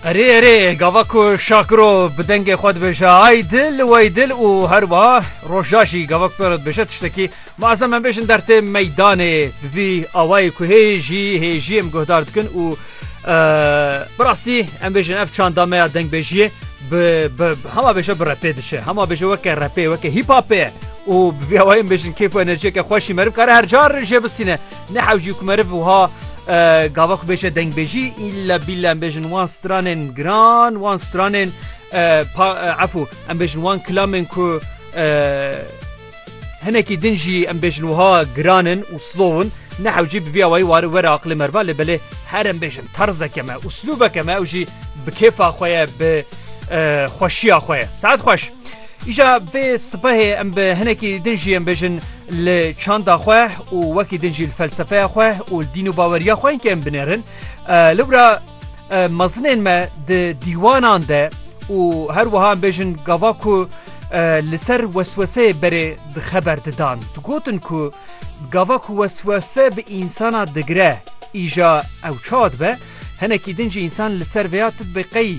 Erê erê gava ku Şakiro bi dengê xwe dibêje ay dil û ey dil û her wiha roja jî gava ku pêro dibêje tiştekî ma ez em em bêjin dertê meydanê bi vî awayê ku hê jî hê jî em guhdar dikin û bi rastî em bêjin ev çanda me ya dengbêjiyê bi bi hema bêje bi repê diçe hema bêje weke repê weke hîpapê ye û bi vî awayê em bêjin kêf û enerjiyeke xweş jî meriv kare her car jê bistîne. Ne hewcî ku meriv wiha gava ku bêje dengbêjî îlla bîlla em bêjin wan stranên giran wan stranên efû em bêjin wan kilamên ku hinekî din jî em bêjin wiha giranin û slowin ne hewcî bi vî awayî wari were aqilê merva lê belê her em bêjin terzeke me uslûbeke me ew jî bi kêfa xwe ye bi xweşiya xwe ye saet xweş. Îja vê sibehê em bi hinekî din jî yên bêjin li çanda xwe û wekî din jî li felsefeya xwe û li dîn û baweriya xwe yên kêm binêrin. Lewra mezinên me di dîwanan de û her wiha em bêjin gava ku li ser wesweseyê berê di xeber didan digotin ku gava ku weswese bi însana digire îja ew çawa dibe, Hinekî din jî însan li ser vêya dibê qey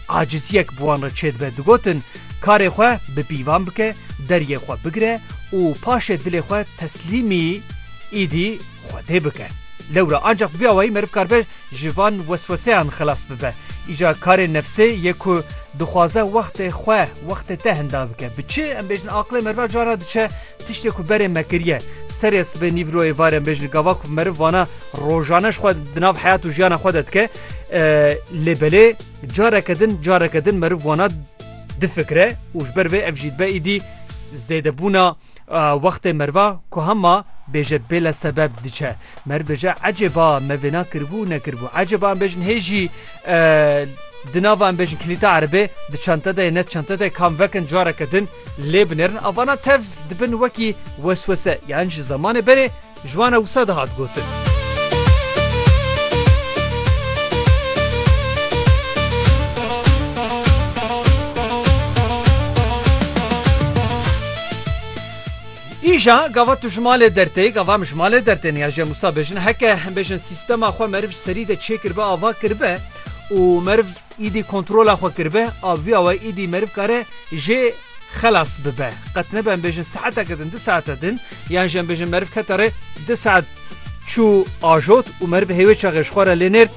aciziyek bi wan re çêdibe, digotin, Karê xwe bi pîvan bike, deriyê xwe bigire û paşê dilê xwe teslîmî îdî Xwedê bike. Lewra ancaq bi vî awayî meriv karibe ji van wesweseyan xilas bibe. Îja karê nefsê yê ku dixwaze wextê xwe, wextê te hinda bike. Bi çi? Em bêjin aqilê meriva cana diçe. Tiştê ku berê me kiriye, serê sibê nîvroyê vare bêjin gava ku meriv vana rojane ji xwe di nav heyat û jiyana xwe de dike lê belê careke din careke din meriv vana difikire û ji ber vê ev jî dibe îdî zêdebûna wextê merva ku hema bêje bêle sebeb diçe. Mer bêje ecêba me vêna kiribû nekiribû. Ecêba em bêjin hê jî Di nava em bêjin kilîta erebê di çente de ye ne di çente de kam vekin careke din lê binêrin avana tev dibin wekî weswese yan ji zemanê berê ji wan e wisa dihat gotin. Îja gava tu ji malê dertê, gava em ji malê dertên ya jê Musa bêjin heke em bêjin sîstema xwe meriv ji serî de çêkiribe ava kiribe û meriv îdî kontrola xwe kiribe a vîya we îdî meriv kare jê xelas bibe. Qet nebe em bêjin saeteke din di saete din yan jî em bêjin meriv kete rê di saet çû ajot û meriv hêwê çaxê ji xwe re lê nêrt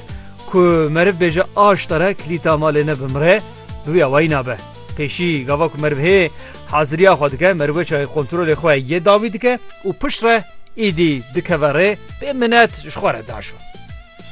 ku meriv bêje aşta re kilîta malê ne bimire bi vîya wayî nabe. Pêşî gava ku meriv hê haziriya xwe dike, meriv çayê kontrolê xwe yê dawî dike û piştre êdî dikeve rê, pê minet ji xwe re daşo.